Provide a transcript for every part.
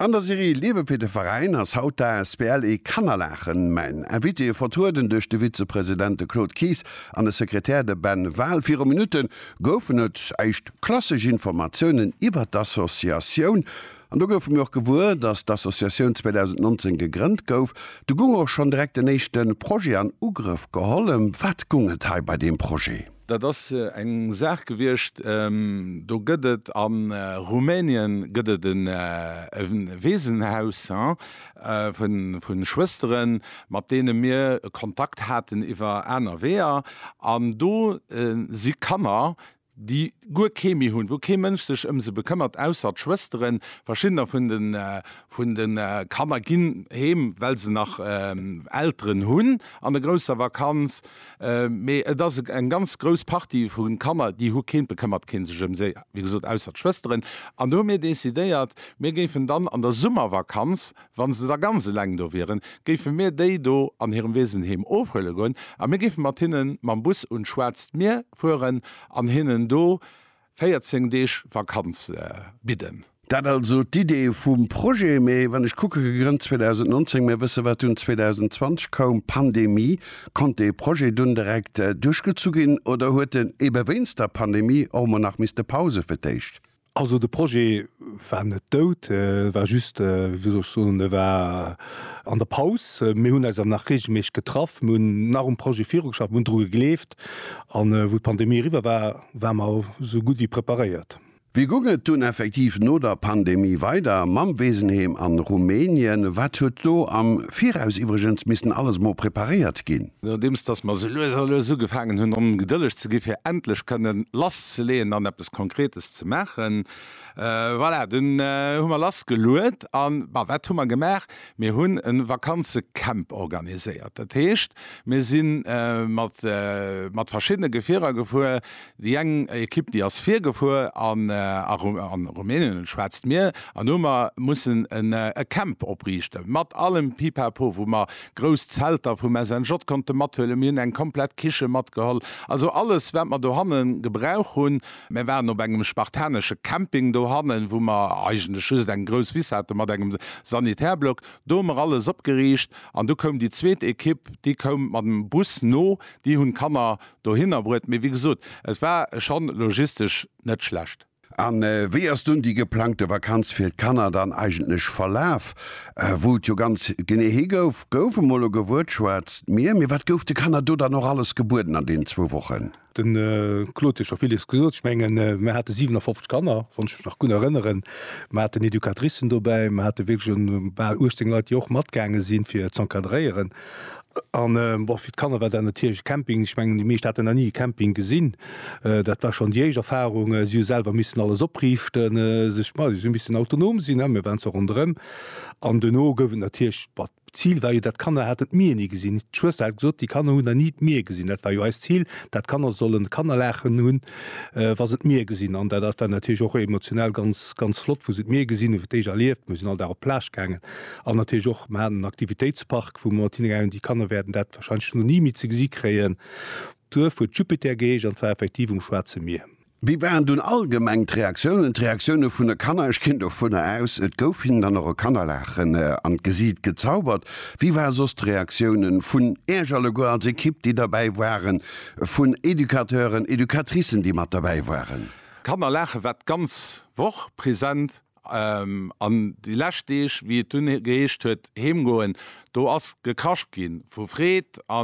An der Serie Liewe fir de Veräin ass haut d'asbl E Kannerlachen mäin Invité, vertrueden duerch de Vizepresident de Claude Kies an de Sekretär de Ben Wahl. Viru Minutte goufen et éischt klassesch Informatiounen iwwert d'Associatioun an do goufe mir och gewuer, dass d'Associatioun 2019 gegrënnt gouf. Du goung och schonn direkt en éischte Projet an Ugrëff geholl. Ëm wat goung et hei bei deem Projet? Dat ass eng Saach gewiescht, do gëtt et a Rumänien gëtt et e Weesenhaus vu Schwëstere mat deene mir Kontakt haten iwwer aner Weeër. An do si Kanner, déi guer kee méi hunn, wou kee Mënsch sech ëm se bekëmmert ausser d'Schwësteren. Verschiddener vun de Kanner ginn heem, well se nach Elteren hunn an e grousser Vakanz Mee et ass eng ganz grouss Partie vu Kanner, déi hu keen, et bekëmmert kee sech ëm si, wéi gesot, ausser d'Schwësteren. An do hu mir decidéiert, mir géifen dann an der Summervakanz, wa se da ganz eleng do wieren, géife mir déi do an hirem Weesenheem ofhuele goen a mir géife mat hinnen mam Bus un d'Schwaarzt Mier fueren an hinnen do 14 Deeg Vakanz bidden. Dat also d'Idee vum Projet. Mee wann ech kucke, gegrënnt 2019, mir wësse wat dunn 2020 koum, Pandemie. Konnt dee Projet dunn direkt duerchgezu ginn oder huet en ebe wéinst der Pandemie och mol nach misste Pause fir d'éischt? Also de Projet war net dout, e war just, wéi soll ech soen, e war an der Paus. Mir hunn eis awer nach reegelméisseg getraff, mir hunn nach um Projet virugeschafft, mir hunn dru gegleeft. gehabt. An wou d'Pandemie eriwwer war, war mer esou gutt wéi preparéiert. Wéi gung et dunn effektiv no der Pandemie weider mam Weesenheem an Rumänien? Wat huet do am Viraus iwwregens missen alles mol preparéiert ginn? Nodeems dass mer esou lues a lues ugefaangen hunn ongedëlleg ze gi fir endlech kënnen lass ze leeën an eppes Konkretes ze maachen, voilà, dunn hu mer lass geluet. An wat hu mer gemaach? Mir hunn e Vakanzecamp organiséiert. Dat heescht, mir si mat verschiddene Gefierer gefuer. Déi eng Ekipp, déi ass virgefuer an a Rumänien, un d'Schwaarzt Mier, an do hu mer mussen e Camp opriichten, mat allem Pipapo, wou mer grouss Zelter vum SNJ konnte mathuelen. Mir hunn eng komplett Kiche matgeholl, also alles, wat mer dohanne gebrauch hunn, Mir waren op engem spartanesche Camping dohannen, wou mer eigentlech just eng grouss Wiss haten mat engem Sanitärblock. Do hu mer alles opgeriicht an du koum déi zweet Ekipp, déi koum mat dem Bus no, déi hunn d'Kanner dohinner bruet. Mee wéi gesot, et war schonn logistesch net schlecht. A wéi ass dunn déi geplangte Vakanz fir d'Kanner dann eigentlech verlaf? Wou et jo ganz genee hi gouf, gouf emol elo gewuertschwatzt, d'Mier. Mee wat gouf de Kanner do dann och alles gebueden an deenen zwou Wochen? De Claude huet scho villes gesot. Ech mengen, mir hate 57 Kanner, wann ech mech nach gutt erënneren. Mir haten Educatricen dobäi, mir hate wierklech bal 18 Leit, déi och matgaange sinn, fir z'encadréieren. An, bon, fir d'Kanner war dat natierlech e Camping. Ech mengen, déi meescht haten nach ni e Camping gesinn. Dat war schonn déi éischt Erfarung. Si hu selwer missen alles opriichten, sech, ma si hu missen autonom sinn, mir waren zwar ronderëm. An duerno gouf et natierlech, D'Zil war jo, dat d'Kanner haten d'Mier ni gesinn. D'Schwëster hat gesot, déi Kanner hunn nach ni d'Mier gesinn. Dat war jo eist Zil, dat d'Kanner sollen Kannerlaachen hunn, wa se d'Mier gesinn. An dat dat war natierlech och emotional ganz, ganz flott, wou se d'Mier gesinn hunn, fir d'éischt erlieft. Mir sinn all Dag op d'Plage gaangen an natierlech och, mer haten en Aktivitéitspark, wou mer mat hinne gaangen. Déi Kanner wäerten dat warscheinlech ni méi ze gesi kréien. D'Duerf huet Jupiter geheescht an 't war effektiv um Schwaarze Mier. Wéi waren dunn allgemeng d'Reaktiounen, d'Reaktiounen vun de Kanner? Ech ginn dovunner aus, et gouf hinnen dann och e Kannerlaachen an d'Gesiit gezaubert. Wéi ware soss d'Reaktiounen vun Iech alleguer als Ekipp, déi derbäi waren, vun Educateuren, Educatricen, déi mat derbäi waren? D'Kanner laachen war d'ganz Woch present. An déi lescht Deeg, wéi et dunn geheescht huet heemgoen, do ass gekrascht gi vu Freed a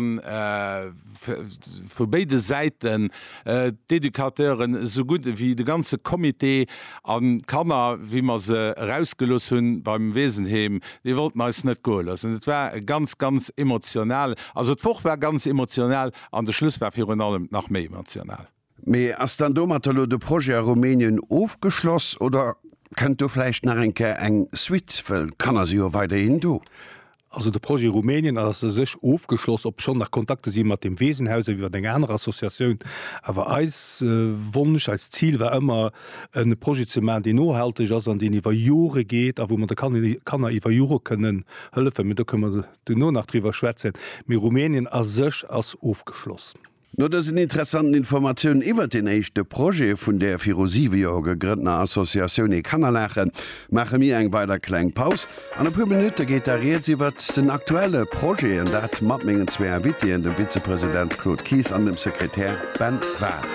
vu béide Säiten, d'Educateuren esou gutt ewéi de ganze Comité. An d'Kanner, wéi mer se erausgelooss hu beim Weesenheem, déi wollten eis net goe loossen. Et war e ganz, ganz emotional, also d'Woch war ganz emotional an de Schluss war virun allem nach méi emotional. Mee ass dann domatter lo de Projet a Rumänien ofgeschloss oder kënnt do vläicht nach eng Kéier eng Suite, wëll d'Kanner si jo weiderhin do? Also de Projet Rumänien ass u sech ofgeschloss, obschonn nach Kontakte si mat dem Weesenhaus an iwwer eng aner Associatioun. Awer eis Wonsch, eist Zil war ëmmer e Projet ze maachen, deen nohalteg ass an deen iwwer Jore geet a wou mer de Kanner iwwer Jore kënnen hëllefen. Mee do kënne mer duerno nach driwwer schwätzen. Mee Rumänien a sech ass ofgeschloss. No dësen interessanten Informatiounen iwwert deen éischte Projet vun der viru 7 Joer gegrënntener Associatioun Ee Kanner laachen maache mir eng weider kleng Paus. An e puer Minutte geet da Rieds iwwert den aktuelle Projet, an dat mat mengen zwee Invitéen, dem Vizepresident Claude Kies an dem Sekretär Ben Wahl.